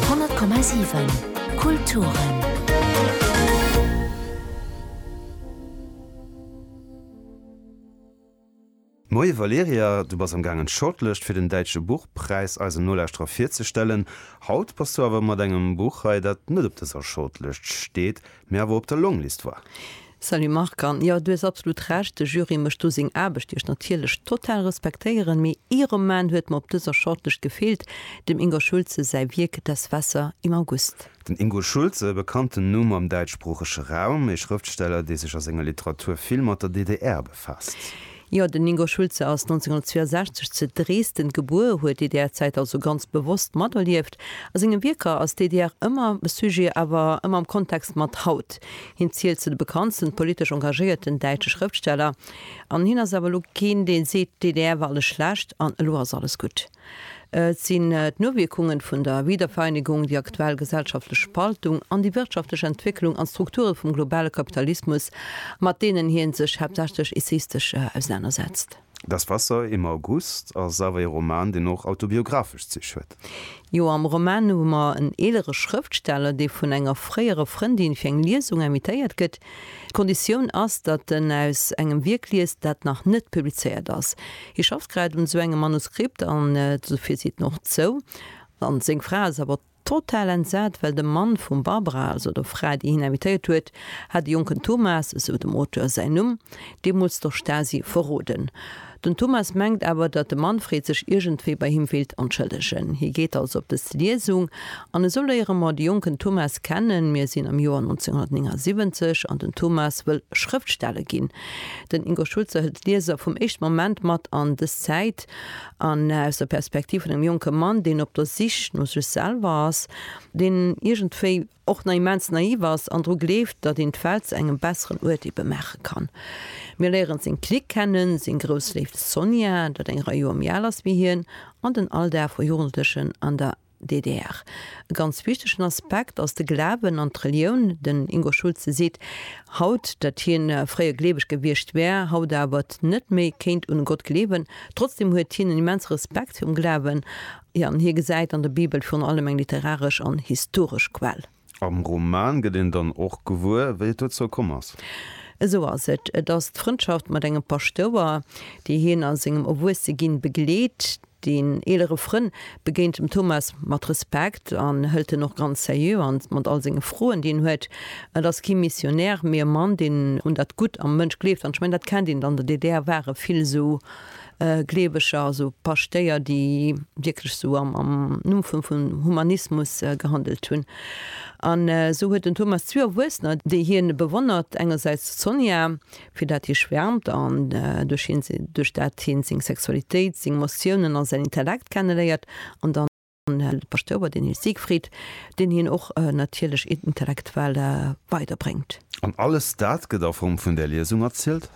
100,7 Kulturen. Moie Valerija, du bass am gaangen d'Shortlëscht fir den Däitsche Buchpräis eisen Nolauschterer virzestellen. Haut bass du awer mat engem Buch hei, dat net op dëser Shortlëscht steet, Mee awer op der Longlist war. Salut Marc, an jo, du hues absolut Recht, de Jury mécht do seng Aarbecht, déi ech natierlech total respektéieren, mee ee Roman huet mer op dëser Shortlist gefeelt, dem Ingo Schulze säi Wierk Das Wasser im August. Den Ingo Schulze, e bekannten Numm am däitschsproochege Raum, ee Schrëftsteller, dee sech a senger Literatur vill mat der DDR befaasst. Jo, den Ingo Schulze ass 1962 ze Dresden gebuer, huet d'DDR-Zäit also ganz bewosst materlieft. A senge Wierker ass d'DDR ëmmer e Sujet, awer ëmmer am Kontext mat haut. Hien zielt zu de bekanntsten politesch engagéierten däitsche Schrëftsteller. An hien ass awer elo keen, dee seet, d'DDR war alles schlecht an elo ass alles gutt. Et sinn d'Nowierkungen vun der Wiedervereinigung, déi aktuell gesellschaftlech Spaltung an déi wirtschaftlech Entwécklung an d'Strukture vum globale Kapitalismus, mat deenen hien sech haaptsächlech essayistesch ausenanersetzt. Das Wasser im August ass awer ee Roman, deen och autobiographesch Zich huet. Jo, am Roman hu mer en eelere Schrëftsteller, dee vun enger fréiere Frëndin fir eng Liesung invitéiert gëtt. D'Konditioun ass, datt en aus engem Wierk liest, dat nach net publizéiert ass. Hie schafft grad un esou engem Manuskript an esou vill seet en och zou. An seng Fra ass awer total entsat, well de Mann vum Barbara, also der Fra, déi hien invitéiert huet, hat de jonken Thomas, esou dem Auteur säin Numm, deemools der Stasi verroden. Den Thomas mengt awer, datt de Manfred sech iergendwéi bei him wéilt entschëllegen. Hie geet also op dës Liesung. An esou léiere mer de jonken Thomas kennen. Mir sinn am Joer 1979 an den Thomas wëll Schrëftsteller ginn. Den Ingo Schulze hëlt d'Lieser vum éischte Moment mat an dës Zäit an aus der Perspektiv vun engem jonke Mann, deen op der Sich no sech selwer ass, deen iergendwéi. och nach immens naiv ass an dru gleeft, datt een d'Welt zu engem besseren Uert ebe maache kann. Mir léieren seng Clique kennen, seng grouss Léift Sonia, dat eng Rei Joer méi al ass wéi hien, an den Alldag vu Jugendlechen an der DDR. E ganz wichtegen Aspekt ass de Glawen an d'Relioun. Den Ingo Schulze seet haut, datt hien fréier gleeweg gewiescht wär, haut awer net méi kéint un e Gott gleewen. Trotzdeem huet hien en immense Respekt virum Glawen Hie an hie gesäit an der Bibel virun allem eng literaresch an historesch Quell. Am Roman gëtt een dann och gewuer, wéi et dozou komm ass. Esou ass et. Et ass d'Frëndschaft mat engem Paschtouer, déi hien a sengem Erwuesseginn begleet. Deen eelere Frënn begéint dem Thomas mat Respekt an hëlt en och ganz seriö an, mat all senge Froen, déi en huet. Et ass kee Missionär, mee e Mann, deen un dat Gutt am Mënsch gleeft. An ech mengen, dat kennt een dann. An der DDR ware vill esou Gleeweger, also Paschtéier, déi wierklech esou am Numm vum Humanismus gehandelt hunn. An esou huet den Thomas zwee Erwuessener, déi hien bewonnert, engersäits d'Sonia, fir dat hie schwäermt an duerch dat hien seng Sexualitéit, seng Emotiounen a säin Intellekt kenneléiert, an dann, an de Paschtouer, den Hil Siegfried, deen hien och natierlech intellektuell weider bréngt. An alles dat gëtt a Form vun där Liesung erzielt?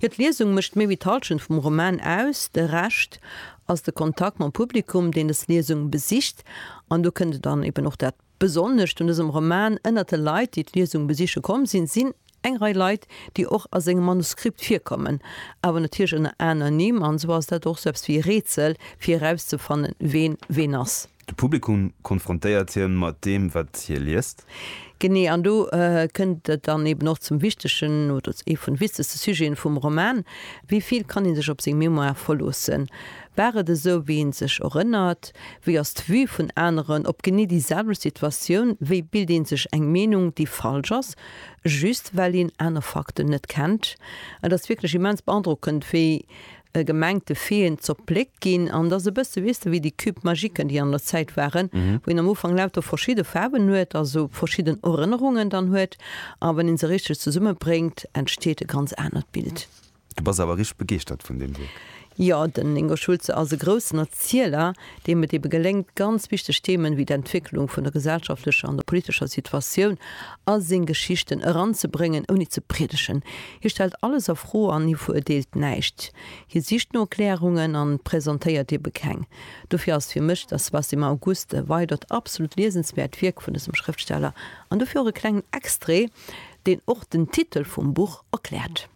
Jo, d'Liesung mécht méi wéi d'Halschent vum Roman aus. De Rescht ass de Kontakt mam Publikum, deen des Liesung besicht. An do kënnt dann eben och dat. Besonnescht un dësem Roman ënnert de Leit, déi d'Liesung besiche komm sinn, sinn eng Rei Leit, déi och a sengem Manuskript virkommen, awer natierlech ënner aner Nimm, an esou ass dat och sou eppes wéi e Rätsel, fir erauszefannen, ween ween ass. De Publikum konfrontéiert hien mat deem, wat hie liest. Genee, an do kënnt et dann eben och zum wichtegen, oder zu ee vun de wichtegste Sujeten vum Roman, Wéi vill kann ee sech op seng Mémoire verloossen? War et esou wéi een sech erënnert? Wéi ass d'Vue vun aneren op genee déi selwecht Situatioun? Wéi bilt een sech eng Meenung déi falsch ass, just well een aner Fakten net kennt? Et ass wierklech immens beandrockend wéi gemengte Veeën zerpléckt ginn an et ass e bësse weess de wéi déi Cubes magiquen déi an der Zäit waren, wou een am Ufank lauter verschidde Faarwen huet, also verschidden Erënnerungen dann huet a wann een se richteg zesummebréngt entsteet e ganz anert Bild. Du bass awer richteg begeeschtert vun deem Wierk. Jo, den Ingo Schulze ass e groussen Erzieler, deem et ebe geléngt, ganz wichteg Themen wéi d'Entwécklung vun der gesellschaftlecher an der politescher Situatioun a seng Geschichten eranzebréngen, ouni ze priedegen. Hie stellt alles a Fro an hie veruerteelt näischt. Hie sicht no Erklärungen an presentéiert ebe keng. Dofir ass fir mech Das was im August e weidert absolut liesenswäert Wierk vun dësem Schrëftsteller an dofir och e klengen Extrait, deen och den Titel vum Buch erkläert.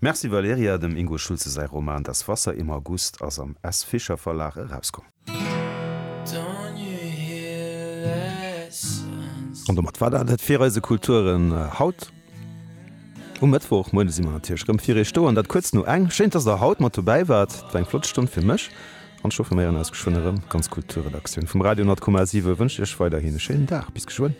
Merci Valerija, dem Ingo Schulze säi Roman Das Wasser im August ass am S. Fischer Verlag erauskomm. An domat war dat et fir eise Kulturen haut. Um Mëttwoch Moien si mer natierlech rëm fir Iech do, an dat kuerz no eng. Schéin, dass der haut mat dobäi waart. Et war eng flott Stonn fir mech, an ech hoffen, mir héieren eis geschwënn erëm. D'ganz Kulturredaktioun vum Radio 10,7 wënscht Iech weiderhin e schéinen Dag. Bis geschwënn.